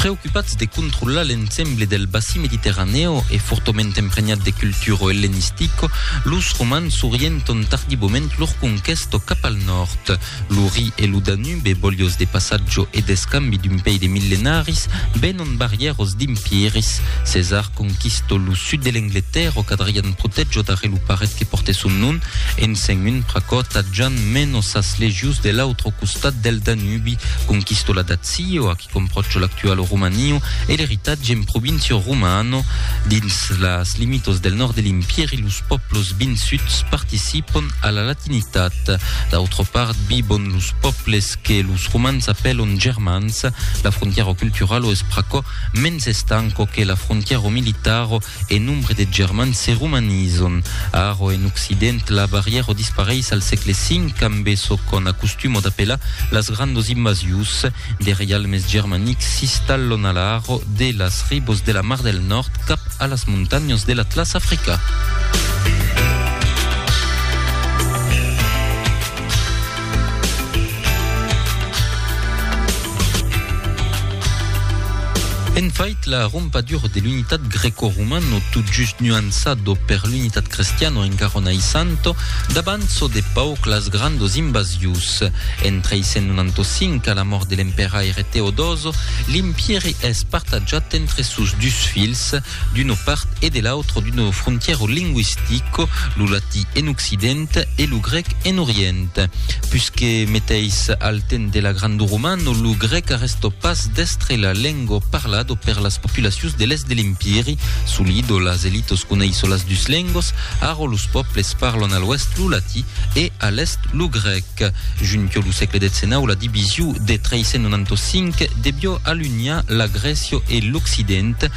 Preocupats de controlar l'ensemble del bassin mediterraneo e fortament empregnat de culturo hellenistico, los romans s'orienton tardivament lor conquesto cap al nòrd. Lo Ri e lo Danube, bolhos de passatjo e d'escambi d'un pei de millenaris, venon barrièros d'impiris. Cesar conquisto lo sud de l'Angletèrra qu'Adrian protejo darrer lo paret que pòrte son nom, en sent un pr'aquò tatjant menos sas legions de l'autre costat del Danube. Ui, conquisto la Dazio, ac comprocho l'actual Romanio e l'eritatge en provincio romano. Dins las limitos del nòrd de l'Impièri los pòplos vinsuts participon a la latinitat. D'autra part vivon los pòples que los romans apèlon germans. La frontièra culturalo es pr'aquò mens estanco que la frontièra militaro, E nombre de germans se romanizon. A Arò en occident, la barrièra o dispareis al sègle V amb e çò qu'on acostuma d'apelar las grandos invasius. De reialmes germanics s'istallon a l'Arò de las ribos de la Mar del Nòrd cap a las montanhas de l'Atlàs africà. En fait, la rompadura de l'unitat greco-romana, tot just nuançado per l'unitat cristiana en Garona i Santo, davant çò de pauc las grandos invasius. En 395, a la mòrt de l'emperaire Teodoso, l'empièri es partatjat entre sos dus filhs, d'una part e de l'autra d'una frontièra lingüistica, lo latí en occident e lo grèc en orient. Pus que meteis al temps de la Grande Romana, lo grèc arrèsta pas d'èstre la lenga parlada per las populacions de l'èst de l'Empiri. Solido, las elitas coneisson las dus lengas, ara los pòbles parlan a l'oèst lo latí e a l'èst lo grèc. Junqueu lo sègle xix, la division de 395 deviá alunhar la Grècia e l'Occident,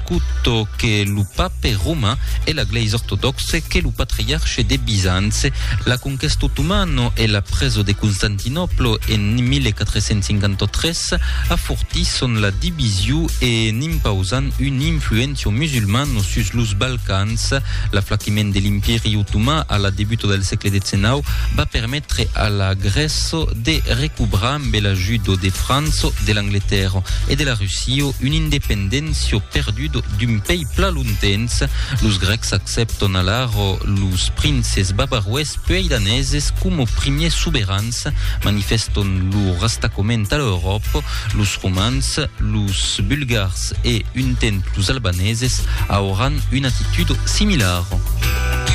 Acuto que lo pape romain e la glèisa ortodòxe que lo patriarche de Bizance, la conquèsta otomano e la presa de Constantinòplo en 1453 afortisson la division en impausant un influencion musulmano sus los Balcans. L'aflaquiment de l'Impèri otoman a la debuta del sègle XIX va permetre a la Grèça de recobrar amb l'ajuda de França, de l'Angletèrra e de la Russia. Sio un independentio perdudo d'un pei pla lontens, los grecs accepton alaro los princes bavaroes puei daneses coma primiers soberans, manifeston lo rastacoment a l'Euròpa, los romans, los bulgars e un temps los albaneses auran una attitudo similara.